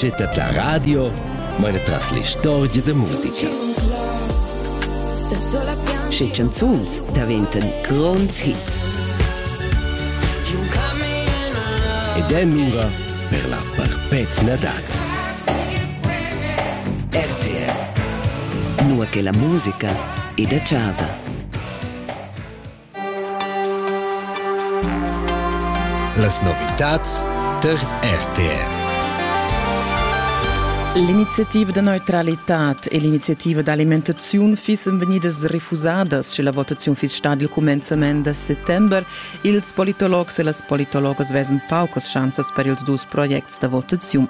Gettet la radio, meine tras l'istorgia da musica. Sche canzuns daventan gronds hits. Ed è mura per la perpetna dat. RTR. Nur che la musica è da casa. Las novitads tar RTR. L'iniziativa da neutralitad e l'iniziativa d'alimentaziun fissen vegnidas refusadas sche la votaziun fiss stada il cumenzament da settember. Ils politologs e las politologas vesan paucas schanzas per ils dus projects da votaziun.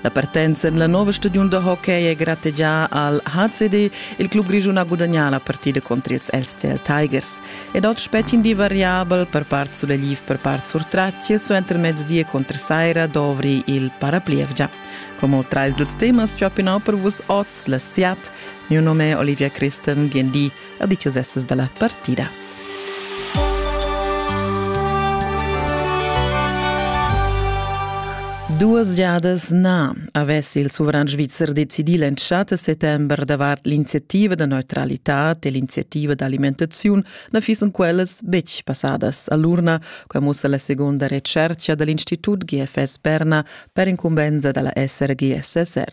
La partenza en la nova stagiun da hockey è grategià al HCD. Il club grischun ha gudagnà la partida contr ils LCL Tigers. Ed otg petg in di variabel per part sulegliv, per part surtratg. Suenter mezdi e contr saira dovri il paraplievgia. Come trais dals temas ciò pinau per vus oz la SIAT. Mio nome è Olivia Christen, bienvì a dichos essas da la partida. Duas giadas na avess il sovran svizzer decidì l'entschatta settember davart l'iniziativa da neutralitad e l'iniziativa d'alimentaziun na fissen quellas betg passadas a l'urna, quai mussa la seconda retschertga da l'Institut GFS Berna per incumbensa da la SRGSSR.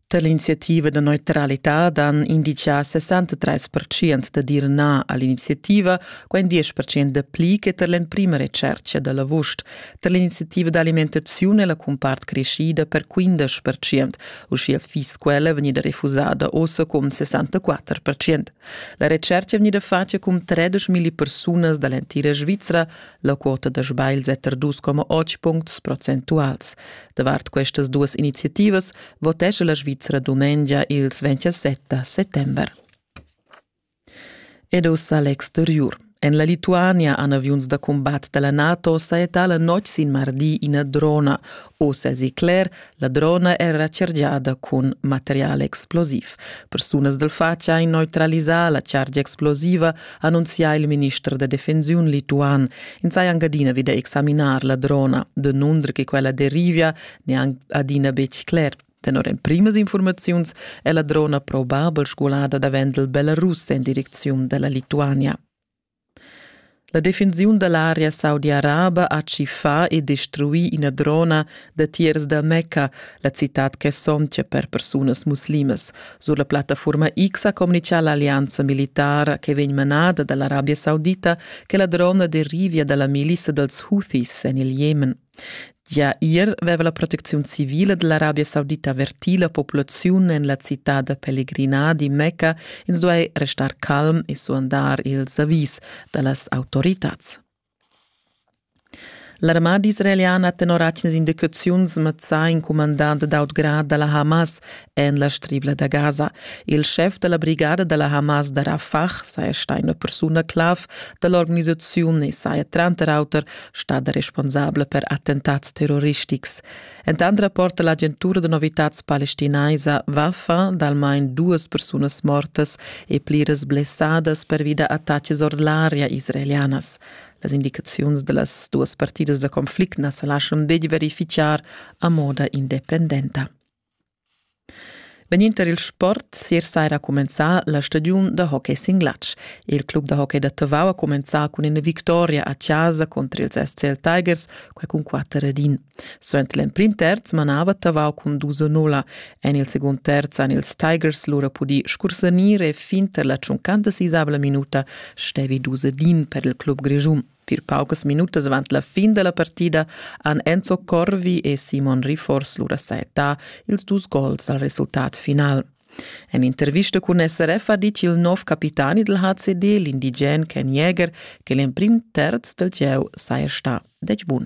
Tar l'iniziativa da neutralità dan inditgà 63% da dir na a l'iniziativa, quai 10% da pli che tar l'emprima retschertga da l'avust. Tar l'iniziativa d'alimentaziun è la cumpart creschida per 15%, uschia fiss quella vegnida refusada ossa cun 64%. La retschertga è vegnida fatga cun 13.000 persunas da l'entira Svizra, la quota da sbagls è tar 2,8 puncts procentuals. Davart questas duas iniziativas votescha la Svizra dumengia ils 27 settember. Ed ussa l'exteriur. En la Lituania han aviuns da combat da la NATO saettà la notg sin mardi ina drona. Oz èsi cler, la drona era chargiada cun material explosiv. Persunas dal fatg han neutralisà la chargia explosiva, annunzià il minister da defensiun lituan. Ins haja anc adina vida examinar la drona. De nunder che quella derivia neanc adina betg cler. Tenor emprimas informaziuns è la drona probabel sgulada davent il Belarus en direcziun da la Lituania. La defensiun da l'area saudi-araba ha tschiffà e destruì ina drona datiers da Mecca, la citad che sontga per persunas muslimas. Sur la plattaforma X ha communichà l'allianza militara che vegn manada da l'Arabia Saudita che la drona derivia da la milissa dals Houthis en il Jemen. Gia ier veva la protecziun civila dell'Arabia Saudita avertì la populaziun en la citad da pellegrina di Mecca, ins duai restar calm e suandar ils avis da las autoritads. L'armada israeliana ha tenor atgnas indicaziuns mazzà in cumandant d'autgrad da la Hamas en la stribla da Gaza. Il schef da la brigada da la Hamas da Rafah saja stà ina persuna clav da l'organisaziun e saja tranter auter stada responsabla per attentats terroristics. Entant rapporta l'agentura da novitads palestinaisa Wafa d'almain duas persunas mortas e pliras blessadas pervi da attacks ord l'aria israelianas. Las indicaziuns da las duas partidas da conflict na sa laschan betg verifichar a moda independenta. Vegninder il sport sier saira ha cumenzà la stagiun da hockey sin glatsch. Il club da hockey da Tavau ha cumenzà cun ina victoria a chasa contr ils SCL Tigers, quai cun quatter ed in. Suenter l'emprim terz manava Tavau cun dus a nulla. En il segund terz han ils Tigers lura pudì scursanir e fin tar la tschuncanta sisavla minuta stevi dus ed in per il club grischun. Pir paucas minutas avant la fin da la partida han Enzo Corvi e Simon Rifors lura sajettà ils dus gols al resultat final. En intervista cun SRF ha dit il nov capitani dal HCD, l'indigen Ken Jäger, che l'emprim terz dal gieu saja stà detg bun.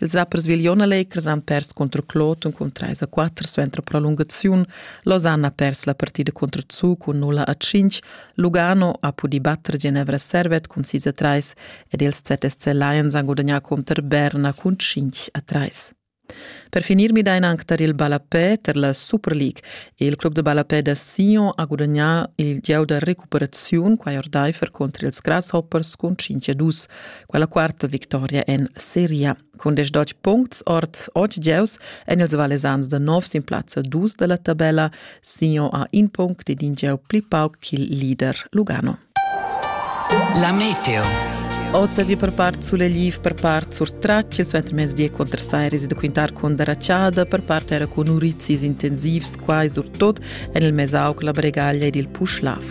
Els rappers Viglion Allegers han pers contro Kloten cun 3 a 4 suenter prolungaziun. Losanna ha pers la partida contro Zug cun 0 a 5. Lugano ha pudì batter Ginevra Servet cun 6 a 3 ed ils ZSC Lions han gudagnà contro Berna cun 5 a 3. Per finir midain anche tar il Ballapè per la Super League. Il club de Ballapè da Sion ha gudagnà il gieu da recuperaziun qua ordaifer contro ils Grasshoppers cun 5 a 2. quella quarta victoria en Seria cun desch dotg puncts ord otg gieus en ils Valesans da nov sin plazza dus da la tabella. Sion ha in punct ed in gieu pli pauc ch'il leader Lugano. La meteo. Occasi per part Suleliv, per part sur Tracce, suenter mezdi contro Sairis da quintar con Daracciada, per part era con Urizis intensivs, quai surtut en il Mesauc, la Bregaglia ed il Puschlav.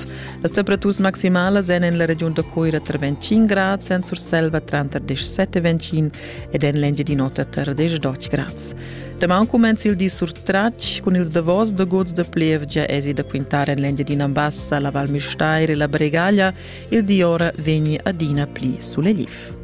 Las temperaturas maximalas èn en la regiun da Coira tra 25 grads, en Surselva tranter 17 e 25 ed en l'Engiadin'Ota tra 10 e 12 grads. Damaun cumenza il di surtratg cun ils davos da gods da plievgia esi da quintar en l'Engiadina Bassa, la Val Müstair e la Bregaglia. Il di ora vegni adina pli sulegliv.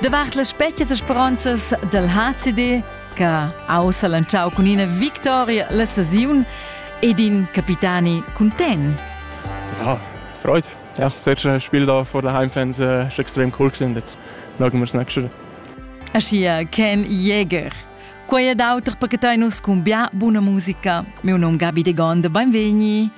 Davart las spetgas e speronzas del HCD, che ha ussa lanciau cun ina victoria la sesiun, ed in capitani content. Ja, freut. Ja, solche Spiel da vor der Heimfans äh, ist extrem cool gewesen. Jetzt schauen wir es nächste Woche. Aschia Ken Jäger. Quei ed auter per che nus cun bia buna musica. Meu nom Gabi de Gonde, benvegni.